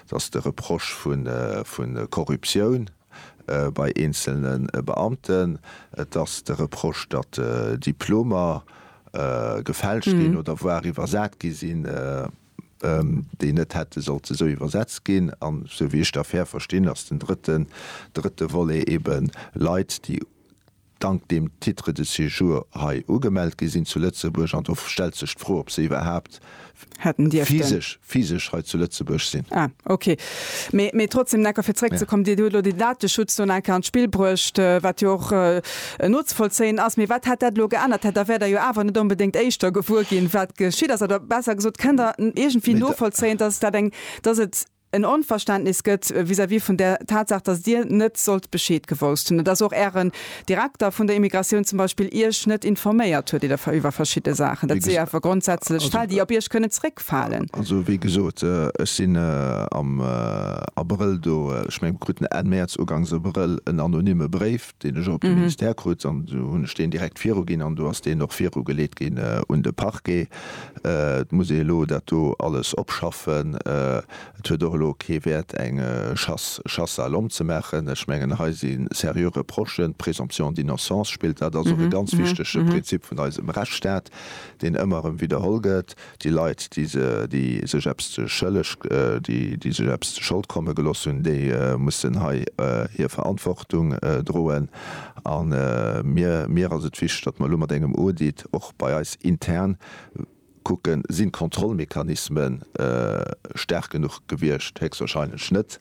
dass de Reproche vu Korruptioun bei eenzelne Beamten, dass de Reproche, datt Diplomer gefälscht ginn oder voire iwwersat gi sinn, déi net hätte sollte esou iwwersetzt ginn. An esou wéi ech d'Affär verstinn, ass den drëtte Volet eeben Leit, déi Dank dem Titre de séjour hei ugemellt gi sinn zu Lëtzebuerg, an do stellt sech d'Fro, ob se iwwerhaapt physesch, physesch hei zu Lëtzebuerg sinn. Ah, okay. Mee, mee trotzdem, Necker, fir zréckzekommen, Dir hutt elo den Dateschutz do nach eng Kéier an d'Spill bruecht, wat jo och nozevollzéien ass. Mee wat hätt dat elo geännert? Dat, da wäert Der jo awer net onbedéngt éischter gewuer ginn, wat geschitt ass. Oder besser gesot, Kënnt Der iergendwéi novollzéien, dass et dat eng, dass et, en Onverständnis gëtt vis-à-vis vun där Tatsaach, datt Dir net sollt Bescheed gewousst hunn, datt och Ären Direkter vun der Immigratioun zum Beispill Iech net informéiert huet iwwer verschidde Saachen. Dat si awer grondsätzlech Fäll, déi op Iech kënnen zréckfalen. Also, wéi gesot, ech sinn am Abrëll do, ech mengen krut en Enn Mäerz, ugangs Abrëll en anonyme Bréif, deen ech och op de Ministère krut an du hunn ech deen direkt viruginn an do ass deen och virugeleet ginn un de Parquet. Et muss ee elo dat do alles opschaffen. Et huet och elo kee Wäert eng Chasse, Chasse à l'homme ze maachen. Ech mengen hei si seriö Reprochen. D'Présomption d'innocence spillt, dat ass och e ganz wichtege Prinzip vun eisem Rechtsstaat, deen ëmmer erëm widderholl gëtt. Déi Leit, déi sech eppes ze schëlleg, déi sech eppes ze Schold komme gelooss hunn, déi mussen hei hir Verantwortung droen. A mir ass et wichteg, datt mer elo mat engem Audit och bei eis intern kucken, Sinn d'Kontrollmechanisme staark genuch gewiescht? Héchstwahrscheinlech net,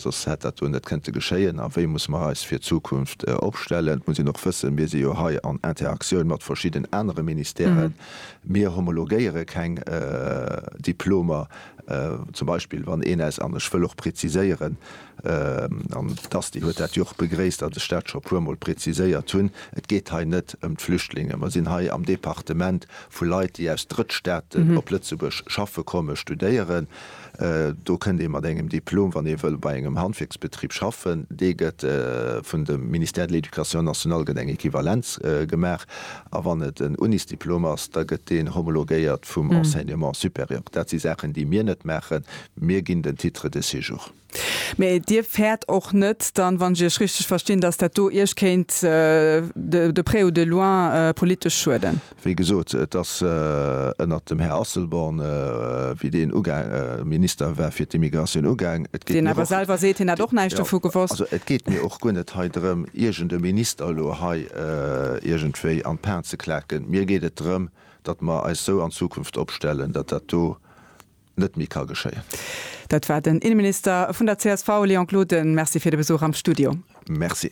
soss hätt dat do net kënnte geschéien. A wéi musse mer eis fir d'Zukunft opstellen? Et muss een och wëssen, Mir si jo hei an Interaktioun mat verschidden anere Ministèren, Mir homologéiere keng Diplomer, zum Beispill wann een aus, an ech wëll och preziséieren, an d'Asti huet dat jo och begréisst, datt ech dat scho e puermol preziséiert hunn, et geet hei net ëm d'Flüchtlinge. Mer sinn hei am Departement vu Leit, déi aus Drëttstaaten op Lëtzebuerg schaffe kommen, studéieren. Do kënnt ee mat engem Diplom, wann ee wëll bei engem Handwierksbetrib schaffen. Dee gëtt vun dem Ministère de l'Éducation nationale gëtt eng Equivalenz gemaach. A wann et en Unisdiplom ass, da gëtt deen homologéiert vum Enseignement supérieur. Dat si Saachen, déi mir net maachen. Mir ginn den Titre de séjour. Mä Dir fäert och net dann, wann ech Iech richteg verstinn, dass dat do Iech kéint de près ou de loin politesch schueden? Wéi gesot, et ass ënnert dem Här Asselborn, wéi deen uga Minister war fir d'Immigratioun ugaang. Et geet mir och guer net hei drëm, iergend e Minister elo hei iergendwéi an d'Pan ze klaken. Mir geet et drëm, datt mer eis esou an Zukunft opstellen, datt dat do net méi ka geschéien. Dat war den Inneminister vun der csv, Léon Gloden. Merci fir de Besuch am Studio. Merci.